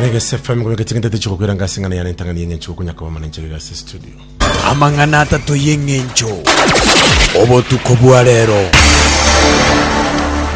Reggae FM kwa miaka ching'itete chikokwira ngasi ng'ana yana entang'ani yeng'encho gokunya kwa mama nenchegere ase studio. amang'ana atato y'eng'encho obotuko bwa rero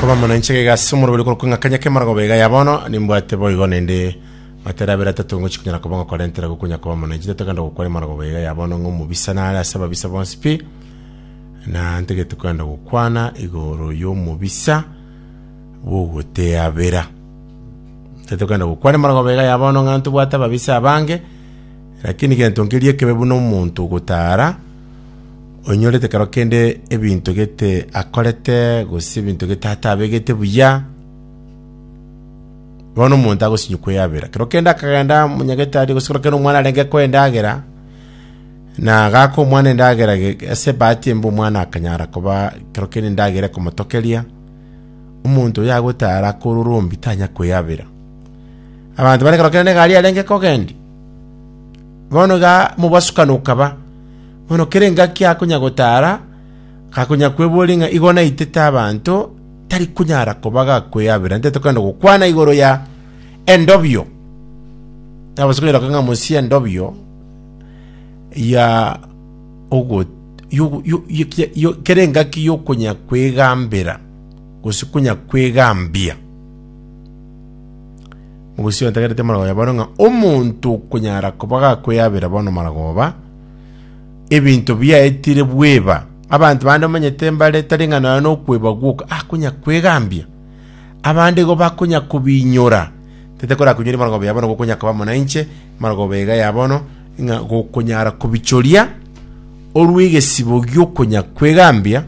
Kwa mama nenchegere gasi omoroberi korwa kung'a kanya kemara gobe iga ya bono nimbwate boigo nende matera abere atato ngochi kunyara kobonga korentera gokunya kwa mama nenchete tokenda gokwara mara gobe iga ya bono ng'o mobisa nare ase ababisa bonsi pi na ntegete kwenda gokwana igoro y'omobisa bw'ogoteabera. Naki tokenda gokwana amarogoro baiga ya bono ng'a ntobwate ababisa abange, lakini gento nkeria ekebe buna omonto ogotara, onyorete ekero kende ebinto gete akorete, gose ebinto gete atabegete buya, bono omonto agosinywa kweyabera. Ekero kende akagenda omonyagetari gose ekero kende omwana arenge koa endagera, na gaaka omwana endagera ge- ge- ase ebahati embe omwana akanyara koba ekero kende endagera ekomotokeria, Omonto oyagotaara akore orombe tanyare kweyabera. Abanto bare korokera negari yarenge kogendia. Bono iga mobasukano okaba. Bono kera engaki akonya gotaara, gakonya kweboria ng'a igo naitete abanto, tari konyara koba gakweyabera. Nte tokenda gokwana igoro ya endobio. Abasukani roka ng'a mosie endobio ya ogo yo- yo- yo- kia- yo- kera engaki y'okonya kwegambera gose konya kwegambia mogosio ntagerete marago ya bono ng'a omonto okonyara koba gakweyabera bono maragoba ebinto biaetire bweba abanto bande omanyete mbare tari ng'a nonya nokweba gwoka ah konya kwegambia abande igo bakonya kobinyora tete korakonyoria maragoba ya bono gokonya koba muna inche maragoba iga ya bono ng'a gokonyara kobichoria orue egesibo gi'okonya kwegambia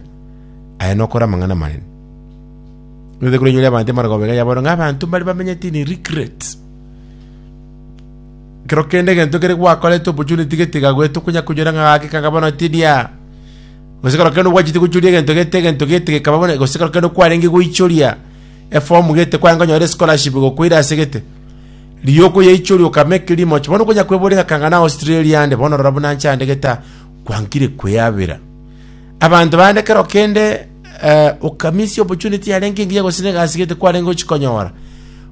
aye nokore amang'ana amanene. Nete kore nyore abanto emara gobega yaboro ng'a abanto mbare bamenyete in regret. Kero kende egento kere gwakorete opportunity getiga goeta okonya konyora ng'a gake kanga bono tidia. Gose kero kende gwachete gochoria egento gete egento gete gekaba bono gose kero kende kwarenge goichoria eform gete kwanga onyore scholarship gokoira ase gete. Rioko yaichoria okame ekerimo oche bono konya kwebora egaka ng'a na Australia ande bono rora buna nche ande geta kwankire kweabera abanto bande kero kende eh, okamisia opportunity yarenge engiya gose na egasi gete kwarenge ochikonyora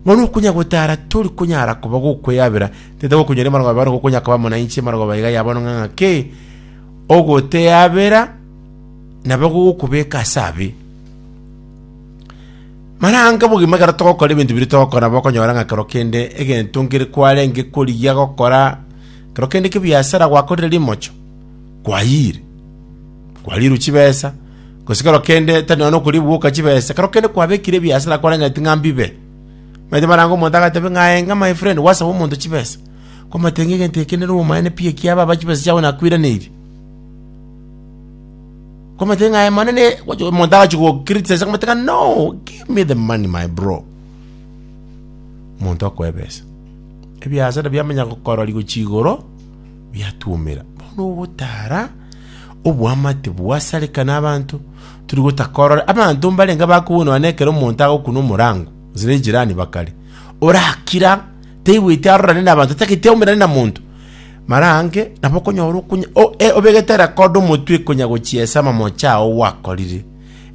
bono okonya gotara tori konyara koba gokweabera tete gokonyora emarogaba bono gokonya koba muna inche emarogaba iga yabono ng'a ng'ake ogoteabera nabo gogokobeka ase abe Marange obogima ekero togokora ebinto biria togokora nabo okonyora ng'a kero kende egento nkere kwarenge korigia gokora kero kende kebiasara gwakorire rimocho, kwayire, kwarirwe chibesa, gose kero kende tari nonya na okoria ebiwoka chibesa, kero kende kwabekire ebiasara kwarengeti ng'a mbibe. Omanyete marange omonto agateba ng'a aye ng'a my friend gwasaba omonto chibesa, kwamotebia ng'a egento eke nere obomaene pi ekiaba aba chibesa chiago nakwiraneiri. Kwamate ng'a aye manene, gwacha omonto agachi gokritisa kwamate ng'a no, give me the money my bro. Omonto akoe ebesa. Ebiasa nabio amanya gokorori gochia igoro, biatuomera. Bono ogotara, oboamate bwasareka na abanto, turi gotakorora. Abanto mbarenge bakobonoa na ekero omonto agokuna omorango, gose ne jirani bakare. Orakira, taigweti arorane na abanto, tagete aumerane na monto. Marange nabo okonyora okonya o- e- obegete rekodo omotwe konya gochiesa amamoche ao gwakorire.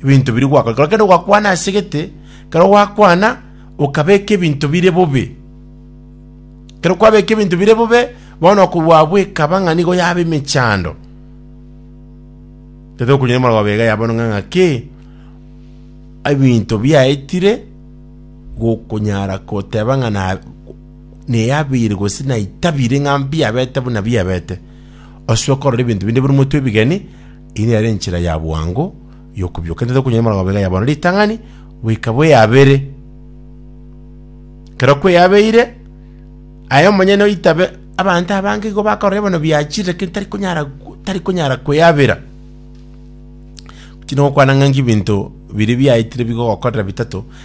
Ebinto biria gwakorire. Kero kende gwakwana ase gete, kero gwakwana okabeka ebinto bire bobe. Kero kwabeka ebinto bire bobe, bono okobwabwa ekaba ng'a nigo yaba emechando. Tete okonyora omorero bega ya bono ng'a ng'aki, ebinto biaetire gokonyara goteba ng'a na neyabeire gose naitabire ng'a mbiabete buna biabete, ase okorora ebinto binde buna omotwe ebigeni, eye nere enchera ya bwango y'okobioka. Ntete okonyora emerogo iga ya bono ritang'ani goika bweyabere. Ekero kweyabeire, aye omonyene oitabe, abanto abange igo bakorora bono biachire lakini tari konyara tari konyara kweyabera. Tindi gokwana ng'a nki ebinto biria biaetire bigogokorera bitato.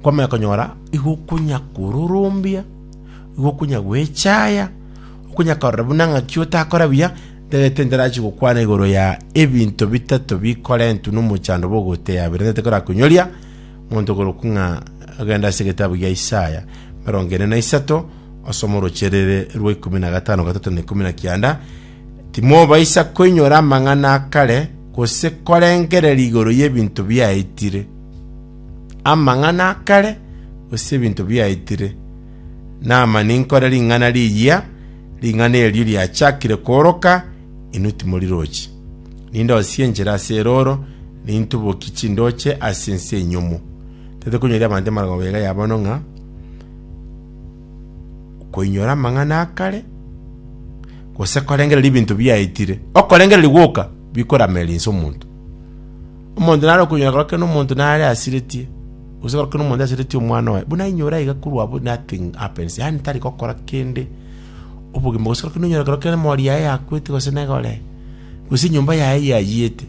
Nkomanya konyora igo okonya kororombia, igo okonya gwechaya, okonya korora buna ng'aki otakora buya, ndagete ndarachi gokwana igoro ya ebinto bitato bikorentwe n'omochando bw'ogoteya bire ndagete korakonyoria monto korokwa ng'a agenda ase egetabu gia Isaya emerongo ene na isato osome oroche rere rwa ikomi na gatano gatato na ikomi na kianda timobaisa koinyora amang'ana akare gose korengereria igoro y'ebinto biaetire amang'ana a kare, gose ebinto biaetire. Naama ninkore ring'ana riyia, ring'ana erio riachakire kooroka, inwe timori roche. Nindosie enchera ase erooro, nintubokie chindooche ase ense enyomo. Tari konyoria abanto emarwago ega ya bono ng'a koinyora amang'ana a kare, gose korengereria ebinto biaetire. Okorengereria gwoka bikorameria inse omonto. Omonto nare okonyora korokera nomonto nare asiretie, gose korokera nomonto asiretie omwana oye, buna ainyore aiga korwa abwo nothing happens, yaani tari gokora kende obogima gose korokera nonyore korokera emori yaye yakwete gose negore, gose enyomba yaye yayiete,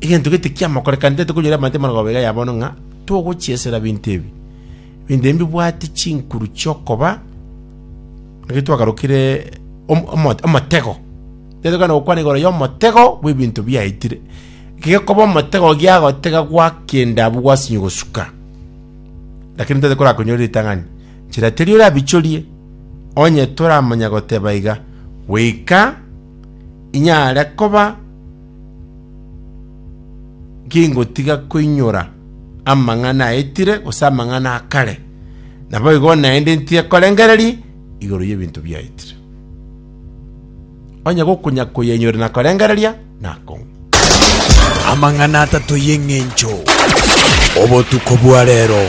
egento gete kiamokorekane tari tokonyora ebante emeroko iga ya bono ng'a togochiesera binto ebi. Binto ebi mbibwate chinkuru chiokoba, ekero twagarukire omo- omo- omotego. Getogene gokwana igoro y'omotego bw'ebinto biaetire, gekoba omotego giagotega gwa kende abwo gwasinye gosuka. Lakini tari korakonyora ritang'ani, nchera teri orabichorie, onye toramanya goteba iga, goika inyare koba gingotiga koinyora amang'ana aetire gose amang'ana akare, naboigo naende ntige korengereria igoro y'ebinto biaetire. Onye gokunya koyenyure na korengereria, nako. Amang'ana atato y'eng'encho. Obotuko bwa rero.